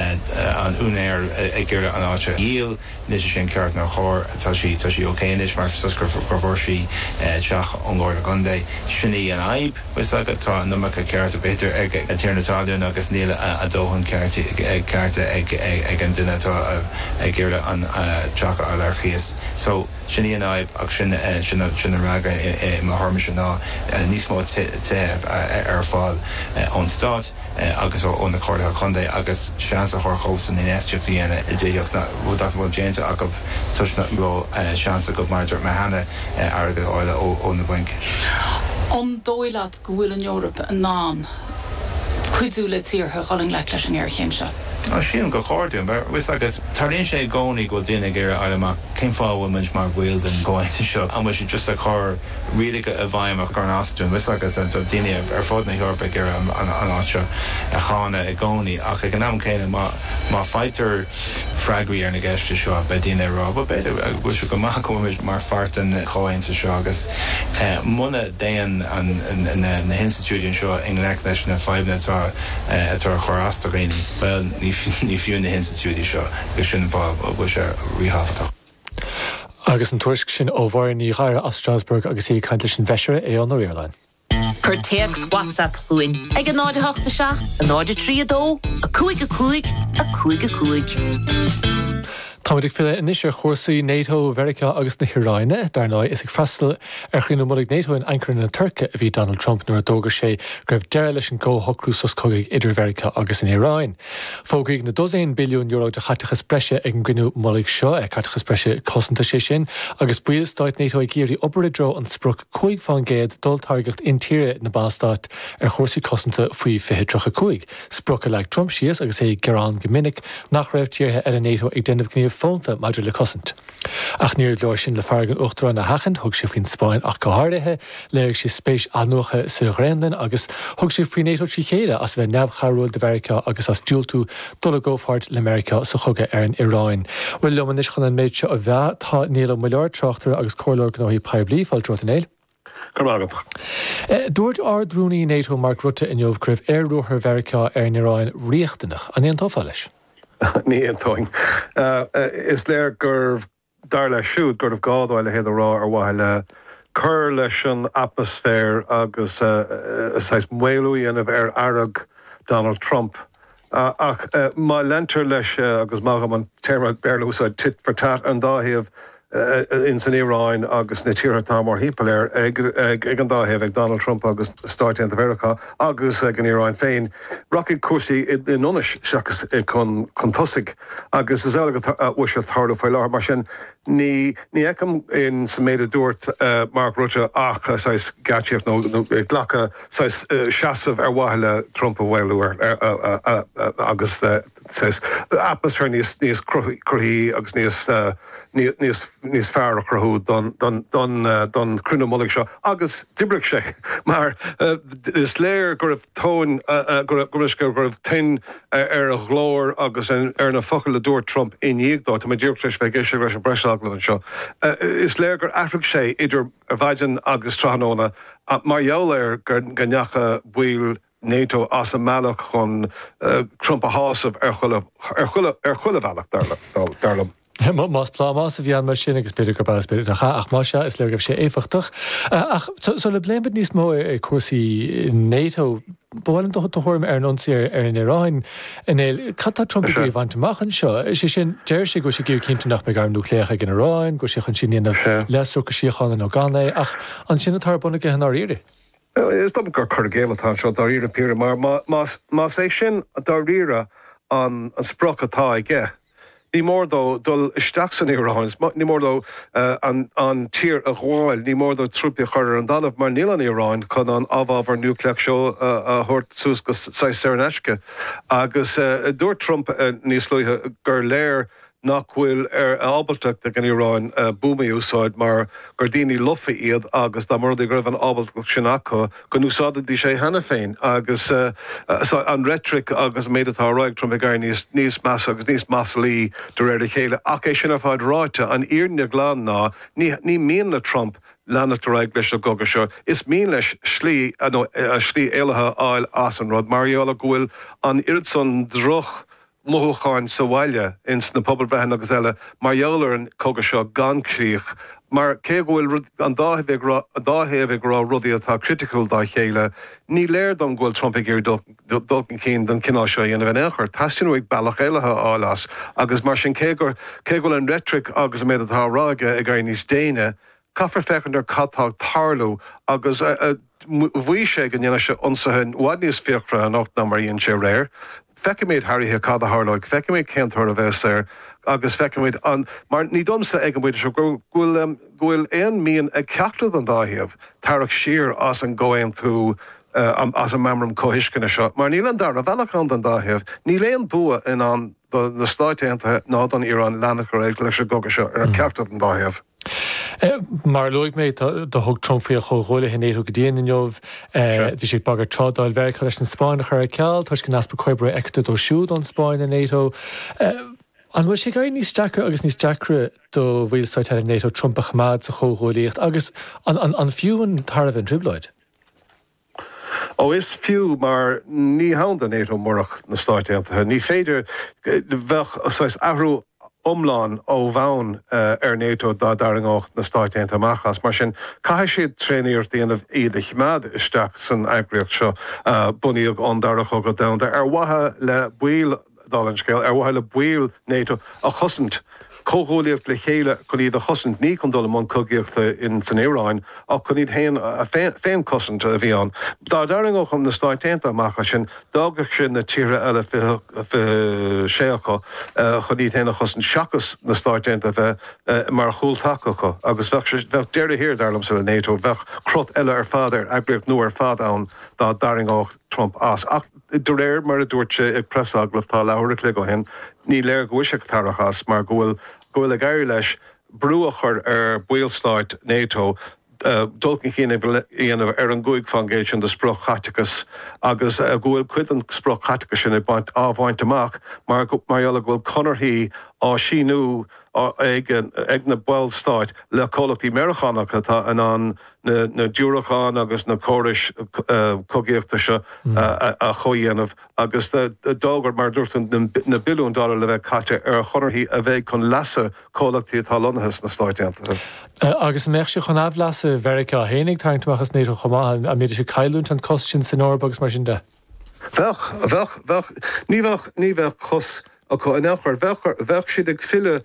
an úinéir ag iarraidh an áit a dhíol, anois is é an ceart, nár chóir, tá sí, tá sí ok anois mar is gur, go bhfuair sí teach ón gComhairle Contae, sin í an fhadhb, bhfios agat, tá an iomarca cearta b'fhéidir ag an tiarna talún agus níl a dóthain ceart, cearta ag, ag an duine atá ag iarraidh an teach a fháil ar chíos. So. Sin í an fhadhb ach sin an freagra i mo thuairimse ná níos mó tithe a bheith ar fáil ón Stát agus ó na Comhairleacha Contae agus seans a thabhairt dóibhsan infheistíocht a dhéanamh i dtithíocht nach bhfuil déanta acu toisc nach bhfuil seans acu, mar a dúirt mé cheana airgead a fháil ó na bainc. An dóigh leat go bhfuil an Eoraip in ann cuidiú le tíortha dul i ngleic leis an ngéarchéim seo. Tá sé sin go cinnte, mar tá a fhios agat tarlaíonn sé i gcónaí go bhfuil daoine ag iarraidh a fháil amach cén fáth a bhfuil muid mar bhall den chomhaontas seo, an bhfuil siad just ag cur rialacha i bhfeidhm a chuireann as dúinn, tá a fhios agat, tá daoine ar fud na hEorpa ag iarraidh an áit seo a cháineadh i gcónaí. Ach ag an am céanna, má fhaightear freagraí ar na ceisteanna seo, beidh daoine ag rá, bhuel, b'fhéidir go bhfuil sé go maith go bhfuil muid mar pháirt den chomhaontas seo agus, Muna dtéann na hinstitiúidí anseo i ngleic leis na fadhbanna atá ag cur as do dhaoine, bhuel, ní fiú na hinstitiúidí seo, agus sin an fáth a bhfuil sé ríthábhachtach. Agus an tuairisc sin ó Mháire Ní Ghadhra as Strasbourg agus í ag caint leis an bhFeisire Aodhán Ó Ríordáin. Cuir téacs WhatsApp chugainn ag 0 8 7 0 3 2 5 5 5 5. Táimid ag filleadh anois ar chúrsaí Nato, Mheiriceá agus na hIráine. Dar ndóigh, is ag freastal ar chruinniú mullaigh Nato in Ankara na Tuirce a bhí Donald Trump nuair a d'fhógair sé go raibh deireadh leis an gcomhshocrú sos cogaidh idir Mheiriceá agus an Iaráin. Fógraíodh na dosaein billiún euro de chaiteachas breise ag an gcruinniú mullaigh seo, caiteachas breise cosanta, sé sin agus ballstáit Nato ag iarraidh obair i dtreo an sprioc 5 fán gcéad d'olltáirgeacht intíre na mBallstát ar chúrsaí cosanta faoi 2035, sprioc a leag Trump síos agus é ag gearán go minic nach raibh tíortha eile Nato ag déanamh gníomh fónta maidir le cosaint. Ach níor leor sin le fearg an Uachtaráin a sheachaint, thug sé faoin Spáinn ach go háirithe, léirigh sé spéis athnuaithe sa Ghraonlainn agus thug sé faoi Nato trí chéile as a bheith neamhchabhrúil do Mheiriceá agus as diúltú dul i gcomhpháirt le Meiriceá sa chogadh ar an Iráin. Bhuel, liom anois chun an méid seo a mheá tá Niall Ó Muilleoir, tráchtaire agus comhairleoir gnóthaí poiblí, fáilte romhat, a Néill. Go raibh maith agat. Dúirt Ard-Rúnaí Nato Mark Rutte inniu go raibh aer-ruathar Mheiriceá ar an Iráin riachtanach. An aontófá leis? Ní aontóinn. Is léir gurbh Dar leis siúd gurbh gá dó a leithéid a rá ar mhaithe le cur leis an atmaisféar agus saghas maolú a dhéanamh ar fhearg Donald Trump. Ach má leantar leis, agus maith dhom an téarma Béarla a úsáid, tit for tat, an dá thaobh, ins an Iaráin agus sna tíortha atá mórthimpeall uirthi, ag an dá thaobh, ag Donald Trump agus Stáit Aontaithe Mheiriceá, agus go n-éirí | féin, rachaidh cúrsaí i ndonas seachas chun tosaigh, agus is amhlaidh a bhfuil sé ag tarlú faoi láthair. Mar sin, ní fheicim sa méid a dúirt Mark Rutte ach saghas geáitsíocht nó glacadh, saghas seasamh ar mhaithe le Trump a mhaolú agus. atmaisféar níos cruthaithí agus níos fearr a chruthú don chruinniú mullaigh seo agus d'oibrigh sé mar is léir go raibh ton ar a ghlór agus ar na focail a dúirt Trump i ndiaidh dó i ndiaidh dóibh a bheith ag éisteacht leis an bpreisagallamh anseo. Is léir gur athraigh sé idir mhaidin agus tráthnóna mar gheall ar go ndeachaigh baill Nato as a mbealach chun Trump a shásamh ar chuile bhealach, dar liom. Más plámás a bhí ann mar sin, agus b'fhéidir gurb ea, is b'fhéidir nach ea, ach más ea, is léir go raibh sé éifeachtach. Ach sula bpléimid níos mó de chúrsaí Nato, ba mhaith liom do thuairim ar an ionsaí ar an Iaráin. A Néill, cad tá Trump ag iarraidh a bhaint amach anseo? Is é sin, deir sé go bhfuil sé ag iarraidh cinntiú nach mbeidh airm núicléacha ag an Iaráin, go bhfuil sé chun sin a dhéanamh le socrú síochána nó gan é, ach an sin atá ar bun aige i ndáiríre? Is dóigh liom gur cur i gcéill atá anseo dáiríre, a Phiarais, mar más é sin dáiríre an sprioc atá aige, ní mór dó dul isteach san Iaráin, ní mór dó an tír a ghabháil, ní mór dó trúpaí a chur ar an dtalamh, mar níl an Iaráin chun an amhábhar núicléach seo a thabhairt suas go saghas saor in aisce. Agus dúirt Trump níos luaithe gur léir nach bhfuil an ábaltacht ag an Iaráin buamaí a úsáid mar gur daoine lofa iad agus dá mba rud é go raibh an ábaltacht sin acu go n-úsáidfidís sin cheana féin. Agus an reitric agus an méid atá á rá ag Trump ag éirí níos measa agus níos maslaí de réir a chéile. Ach é sin ar fad ráite, an fhírinne ghlan ná, ní mian le Trump leanacht ar aghaidh leis an gcogadh seo. Is mian leis slí, nó slí éalaithe a fháil as an rud, mar gheall go bhfuil an oiread san droch, mothúcháin sa bhaile, ins na pobail bhreathnaigh agus eile mar gheall ar an gcogadh seo gan críoch, mar cé go bhfuil an dá thaobh ag rá rudaí atá criticiúil dá chéile, ní léir dom go bhfuil Trump ag iarraidh dul chun cinn don gcineál seo a dhéanamh in aon chor. Teastaíonn uaidh bealach éalaithe a fháil as, agus mar sin, cé go bhfuil an reitric agus an méid atá á rá aige ag éirí níos déine, Caithfear féachaint ar cad tá ag tarlú agus mhaígh sé go ndéanfadh sé ionsaithe i bhfad níos fíochmhaire anocht ná mar a dhein sé aréir. Feicfimid thar oíche cad a tharlóidh, feicfimid cén toradh a bheas air agus feicfimid an, mar ní léir domsa ag an bpointe seo go bhfuil, go bhfuil aon mhian ag ceachtar den dá thaobh tarrac siar as an gcomhaontú, as an meamram comhthuisceana seo, mar níl an dara bealach ann don dá thaobh. Níl aon bua i ndán do na Stáit Aontaithe ná don Iaráin leanacht ar aghaidh leis an gcogadh seo ar cheachtar den dá thaobh. Mar a luaigh mé, do thug Trump faoi a chomhghuaillithe nato go dian inniu. Bhí sé ag bagairt trádáil Mheiriceá leis an Spáinn a chur ar ceal toisc an easpa comhoibre a fheictear dó siúd ón Spáinn i nato. An bhfuil sé ag éirí níos deacra agus níos deacra do bhaill stáit eile nato Trump a choimeád sa chomhghuaillíocht agus an fiú an tairbhe an trioblóid? Ó is fiú mar ní hann do nato murach na Stáit Aontaithe. Ní féidir go, bheadh saghas athrú iomlán ó bhonn ar nato dá dtarraingeodh na Stáit Aontaithe amach as. Mar sin caithfidh siad tréaniarracht a dhéanamh iad a choimeád isteach san eagraíocht seo a bunaíodh ón Dara Chogadh Domhanda ar mhaithe le baill Dála an scéil, ar mhaithe le baill nato a chosaint, comhghuaillíocht le chéile chun iad a chosaint, ní chun dul i mbun cogaíochta in san Iaráin, ach chun iad féin, féinchosaint, a bhí ann. Dá dtarraingeodh na Stáit Aontaithe amach as sin, d'fhágfadh sin na tíortha eile, fiche sé acu, chun iad féin a chosaint seachas na Stáit Aontaithe a bheith mar chúltaca acu. Agus bheadh sé, bheadh deireadh thar, dar liomsa, le nato, bheadh crot eile ar fad ar eagraíocht nua ar fad ann dá dtarraingeodh Trump as. Ach. De réir mar a dúirt sé ag preasagallamh tá leathuair an chloig ó shin, ní léir go bhfuil sé ag tarrach as mar go bhfuil go bhfuil ag éirí leis brú a chur ar bhaill stáit NATO dul chun cinn a dhéanamh ar an gcúig fán gcéad sin de sprioc-chaiteachas agus go bhfuil cuid den sprioc-chaiteachas sin ag baint á bhaint amach mar gheall go bhfuil conarthaí á síniú ag na baill stáit le comhlachtaí Meiriceánacha atá in ann na diúracáin agus na córais cogaíochta seo a chomhdhéanamh agus d'fhógair, mar a dúirt tú, na billiúin dollar le bheith caite ar chonarthaí a bheidh chun leasa comhlachtaí atá lonnaithe sna Stáit Aontaithe. Agus an mbeadh sé chun aimhleasa Mheiriceá féin tarraingt amach as nato chomh maith? An mbeidís ag cailliúint an cos sin san Eoraip agus mar sin de? Bheadh, bheadh, bheadh. Ní bheadh, ní bheadh cos acu in aon chor. Bheadh, bheadh siad ag filleadh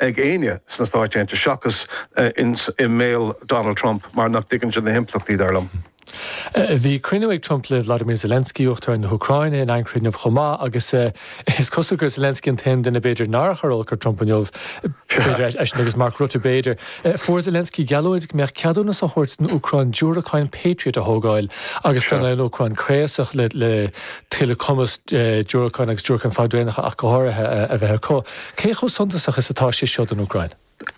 ag éinne sna Stáit Aontaithe seachas i mbéal Donald Trump mar nach dtuigeann sé na himpleachtaí, dar liom. Bhí cruinniú ag Trump le Vladimir Zelensky, Uachtarán na hÚcráine, in Ankara inniu chomh maith agus is cosúil gur Zelensky an t-aon duine b'fhéidir nár chuir olc ar Trump inniu, b'fhéidir eisean agus Mark Rutte b'fhéidir. Fuair Zelensky geallúint go mbeadh ceadúnas á thabhairt don Úcráin diúracáin Patriot a thógáil agus tá an Úcráin craosach le tuilleadh cumas diúracán agus diúracáin fadraonacha ach go háirithe a bheith acu. Cé chomh suntasach is atá sé seo don Úcráin?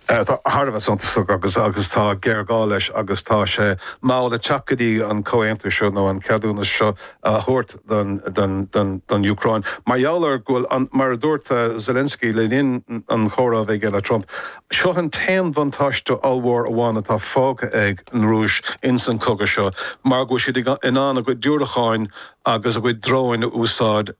Thar a bheith suntasach agus tá géarghá leis agus tá sé mall ag teacht go dtí an comhaontú seo nó an ceadúnas seo a thabhairt don Úcráin mar gheall ar go bhfuil, mar a dúirt Zelensky le linn an chomhrá a bhí aige le Trump, seo an t-aon bhuntáiste ollmhór amháin atá fágtha ag an Rúis insan chogadh seo mar go bhfuil siad in ann a gcuid diúracáin agus a gcuid dróin a úsáid,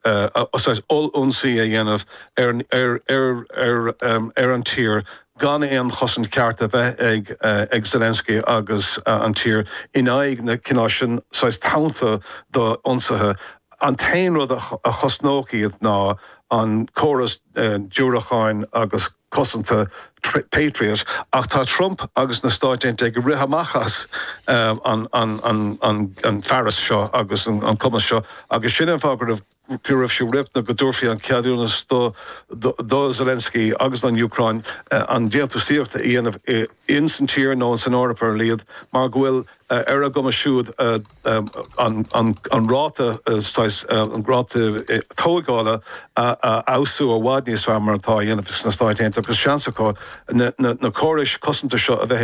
ollionsaí a dhéanamh ar an tír gan aon chosaint ceart a bheith ag Zelensky agus an tír in aghaidh na cineál seo saghas tonnta d'ionsaithe. An t-aon rud a chosnódh iad ná an córas diúracáin agus cosanta Patriot, ach tá Trump agus na Stáit Aontaithe ag rith amach as an bhfearas seo agus an cumas seo agus sin an fáth go raibh. go raibh sé ríthábhachtach go dtabharfaí an ceadúnas do Zelensky agus don Úcráin an déantúsaíocht a dhéanamh ins an tír nó ins an Eoraip ar a laghad mar go bhfuil ar a gcumas siúd an ráta saghas an ráta tógála a fheabhsú i bhfad níos fearr mar atá á dhéanamh sna Stáit Aontaithe agus seans acu na córais cosanta seo a bheith